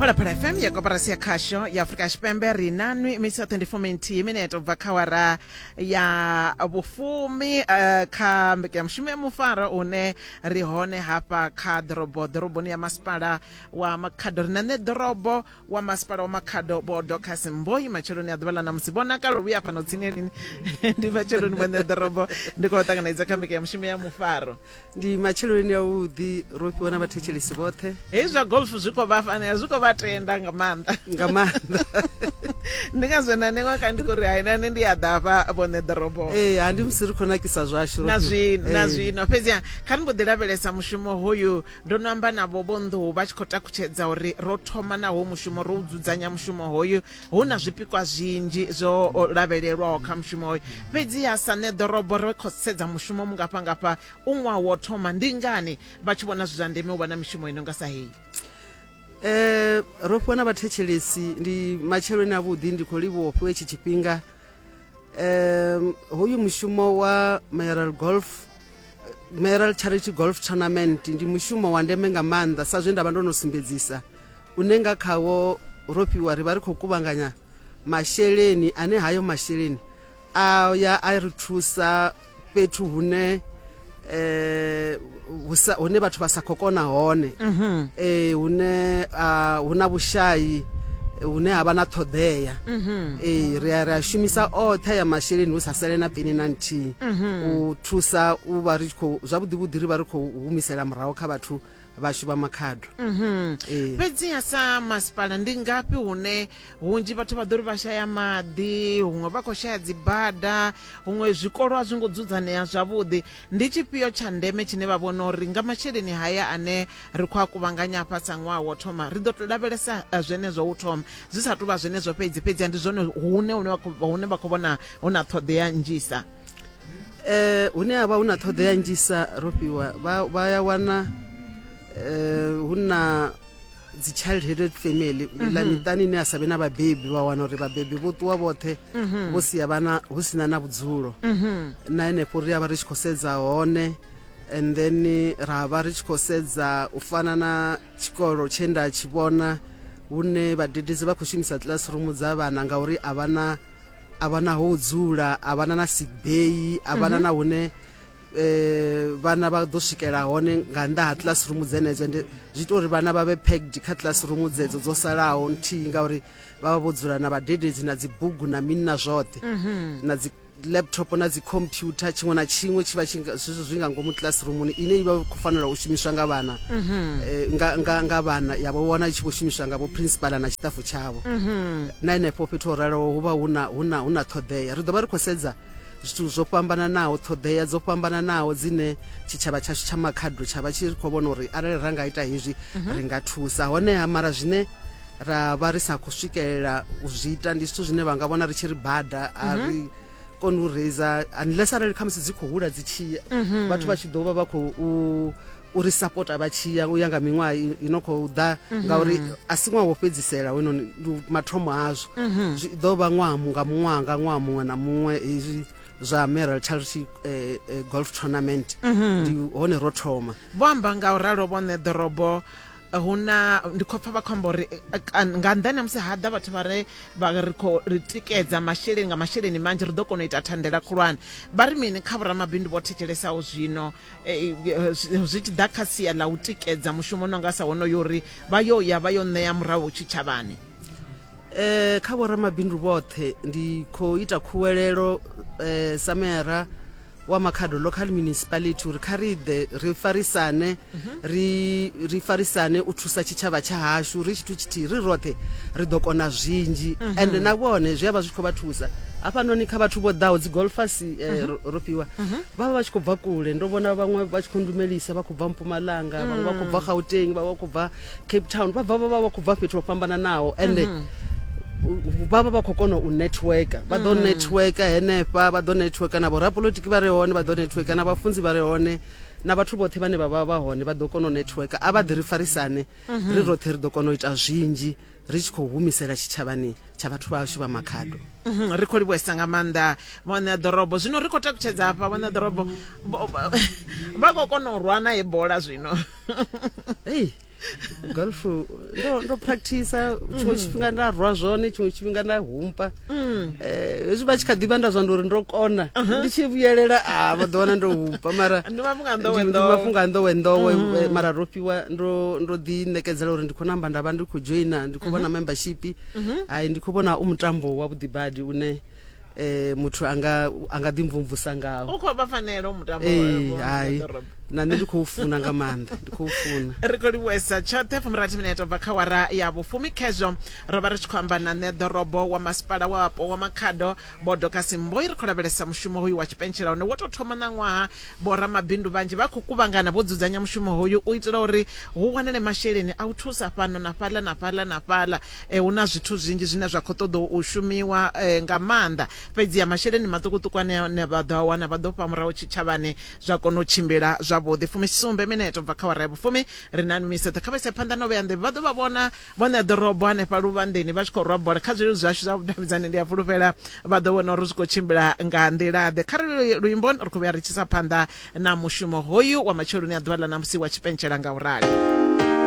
phalaphala fm ya koporasi ya khasho ya afurika tshipembe ri na nwi misi ya 24 minthi mineto u bva kha wara ya vhufumi eh, kha mbekanyamushumo ya mufaro une ri hone hafha kha ḓorobo ḓoroboni ya masipala wa makhado ri na nṋe ḓorobo wa masipala wa makhado vho docas mboi matsheloni a ḓuvha ḽa ṋamusi vho nakalo vhuya fhano tsini lini ndi matsheloni vho nṋe ḓorobo ndi khou ṱanganedza kha mbekanyamushumo ya mufaro ndi matsheloni a vhuḓi ro fhiwa na vhathetshelesi vhoṱhe hei zwa golf zwi khou vha fanela zwi khou vha tenda nga maanḓa nga maanḓa ndi nga zwena newa ka ndi khou ri hainane ndi a ḓafha vhone ḓorobo ee ha ndi musi ri khou nakisa zwashu na zwino na zwino fhedziha kha ni mbo ḓi lavhelesa mushumo hoyu ndo no amba navho vho nḓuhu vha tshi khou takutshedza uri ro thoma naho mushumo ro u dzudzanya mushumo hoyu hu na zwipikwa zwinzhi zwo lavhelelwaho kha mushumo hoyo fhedziha sa nṋe ḓorobo ri khou sedza mushumo mungafhangafha u ṅwaha wo thoma ndi ngani vha tshi vhona zwi zwa ndeme u vha na mishumo i no nga sa heyi eh ro fhiwa na vhathetshelesi ndi matsheloni avhuḓi ndi khou livhuwa u fhiwa itshi tshifhinga um hoyu mushumo wa mayoral golf Meral Charity Golf Tournament ndi mushumo wa ndeme nga maanḓa sa zwe nda vha ndo no sumbedzisa une nga khawo ro fhiwa ri vha ri khou kuvhanganya masheleni ane hayo masheleni a ya a ri thusa fhethu hune eh hune vhathu vha sa khou kona hone mhm. eh hune ah, hu na vhushayi hune ha vha na ṱhoḓea mhm. ee ri a ri a shumisa oṱhe ya masheleni hu sa sele na peni na nthihi mhm. u thusa u vha ri tshi khou zwavhuḓi vhuḓi ri vha ri khou humisela murahu kha vhathu vhashu vha makhado mhm. ee. fhedziha sa masipala ndi ngafhi hune hunzhi vhathu vha ḓo ri vha shaya maḓi huṅwe vha khou shaya dzibada huṅwe zwikolo a zwi ngo dzudzanea zwavhuḓi ndi tshifhio tsha ndeme tshine vha vhona uri nga masheleni haya ane ri khou a kuvhanganya afha sa ṅwaha wo thoma ri ḓo to lavhelesa eh, zwenezwo u thoma zwi sa tou vha zwenezwo fhedzi fhedzi ndi zwone hune hune vha khou vhona hu na ṱhoḓea nnzhisa eh hune ha vha hu na ṱhoḓea nnzhisa ro fhiwa vha ya wana eh hu na dzi child headed family mhm. la miṱani ine a sa vhe na vhabebi vha wana uri vhabebi vho ṱuwa vhoṱhe mhm. vho sia vhana hu sina na vhudzulo mhm. na henefho ri a vha ri tshi khou sedza hone and then ra vha ri tshi khou sedza u fana na tshikolo tshe nda tshi vhona hune vhadededzi vha khou shumisa classroom dza vhana ngauri a vha na a vha na ho dzula a vha na na sick bay a vha na na hune eh vhana vha ḓo swikela hone nga nnḓa ha classroom dzenedzo ende zwi ita uri vhana vha vhe packed kha classroom dzedzo dzo salaho nthihi ngauri vha vha vho dzula na vhadededzi na dzibugu na mini na zwoṱhe na dzi laptop na dzi computer tshiṅwe na tshiṅwe tshi vha zwithu zwi nga ngomu classroomuni ine i vha khou fanela u shumiswa nga vhana mhm. eh, nga vhana ya vho wana i tshi vho shumiswa nga vho principal na tshiṱafu tshavho mhm. na henefho fhethu ho raloho hu vha hu na ṱhoḓea ri ḓo vha ri khou sedza zwithu zwo fhambananaho ṱhoḓea dzo fhambananaho dzine tshitshavha tshashu tsha makhado tsha vha tshi khou vhona uri arali ra nga ita hezwi mhm. ri nga thusa honeha mara zwine ra vha ri sa khou swikelela u zwi ita ndi zwithu zwine vha nga vhona ri tshi ri bada a mhm. ri koni u reisa unless arali khamusi dzi khou hula dzi tshiya mhm. vhathu vha tshi ḓo vha vha khou uri sapota vha tshiya u ya nga miṅwaha i no khou ḓa mhm. ngauri a si ṅwaha wo fhedzisela hoyinoni mathomo azwo zwi ḓo vha ṅwaha nga muṅwaha nga ṅwaha muṅwe na muṅwe hezwi zwa Meral Charity eh, eh, Golf Tournament mhm. ndi hone ro thoma vho amba nga u ralo vhone ḓorobo hu na ndi khou pfa vha khou amba uri eh, eh, nga nnḓani ha musi ha ḓa vhathu vha re vha ri khou ri tikedza masheleni nga masheleni manzhi ri ḓo kona u ita thandela khulwane vha ri mini kha vhoramabindu vho thetshelesao zwino eh, zwi tshi ḓa kha sia ḽa u tikedza mushumo no nga sa wonoyo uri vha yo ya vha yo ṋea murahu tshitshavhani um kha vhoramabindu vhoṱhe ndi khou ita khuwelelo um sameyara wa makhado local municipality uri kha ri ḓe ri farisane ri ri farisane u thusa tshitshavha tsha hashu ri tshithu tshithihi ri roṱhe ri ḓo kona zwinzhi ende na vhone zwi a vha zwi tshi khou vha thusa hafhanoni kha vhathu vho ḓaho dzi golfasi eh, ro- ro fhiwa vha vha vha tshi khou bva kule ndo vhona vhaṅwe vha tshi khou ndumelisa vha khou bva mpumalanga vhaṅwe vha khou bva gauteng vhaṅwe vha khou bva cape town vha bva vha vha vha khou bva fhethu ho fhambananaho ende mm -hmm. vha vha vha khou kona u networka vha ḓo mm. networka henefha vha ḓo networka na vhorapolotiki vha re hone vha ḓo networka na vhafunzi vha re hone na vhathu vhoṱhe vhane vha vha vha hone vha ḓo kona u networka a vha ḓi ri farisane mhm. ri roṱhe ri ḓo kona u ita zwinzhi ri tshi khou humisela tshitshavhani tsha vhathu vhashu vha makhado mhm, ri khou livhuesa nga maanḓa vhone a ḓorobo zwino ri khou takutshedza hafha vhone a ḓorobo vha khou kona u rwa nae bola zwino hey golf ndo ndo practicer tshiṅwe tshifhinga nda rwa zwone tshiṅwe tshifhinga nda humpa Eh, hezwi vha tshi kha ḓivha nda zwa ndi uri ndo kona ndi tshi vhuyelela a vha ḓo wana ndo humpa mara Ndi mafhungo a nḓowe ndi- ndi nḓowe. mafhungo a nḓowe nḓowe eh, mara ro fhiwa ndo ndo ḓi ṋekedzela uri ndi khou namba nda vha ndi khou joina ndi khou vhona membership ai ndi khou vhona u mutambo wa vhuḓibadi une eh muthu anga anga ḓi mvumvusa ngawo u khou vha fanela mutambo eh, hai na nṋe ndi khou funa nga maanḓa ndi khou funa ri khou livhuesa tshoṱhe fumirathi mineto bva kha wara ya vhufumi khezwo ro vha ri tshi khou amba na nṋe ḓorobo wa masipala wapo wa makhado bodo kasimboi ri khou lavhelesa mushumo hoyu wa tshipentshela hone wo tou thoma na ṅwaha vhoramabindu vhanzhi vha khou kuvhangana vho dzudzanya mushumo hoyu u itela uri hu wanale masheleni a u thusa fhano na fhaḽa na fhaḽa na fhaḽa Hu na zwithu zwinzhi zwine zwa khou ṱoḓa u shumiwa nga maanḓa, fhedziha masheleni maṱukuṱuku ane vha ḓo a wana vha ḓo fha murahu tshitshavhani zwa kona u tshimbila zwavhuḓi. Fumisumbe minete u bva kha awara ya vhufumi, ri na Nwiso. Ḓe kha vha ise phanḓa na u vhea nḓevhe. Vha ḓo vha vhona vho ṋea ḓorobo hanefha luvhanḓeni vha tshi khou rwa bola. Kha zwileludzi zwashu zwa vhudavhidzani ndi a fhulufhela vha ḓo vhona uri zwi khou tshimbila nga nḓila-ḓe. Kha ri lile luimbo, ri khou vhuya ri tshi isa phanḓa na mushumo hoyu wa matsheloni a ḓuvha ḽa ṋamusi wa tshipentshela nga u rali.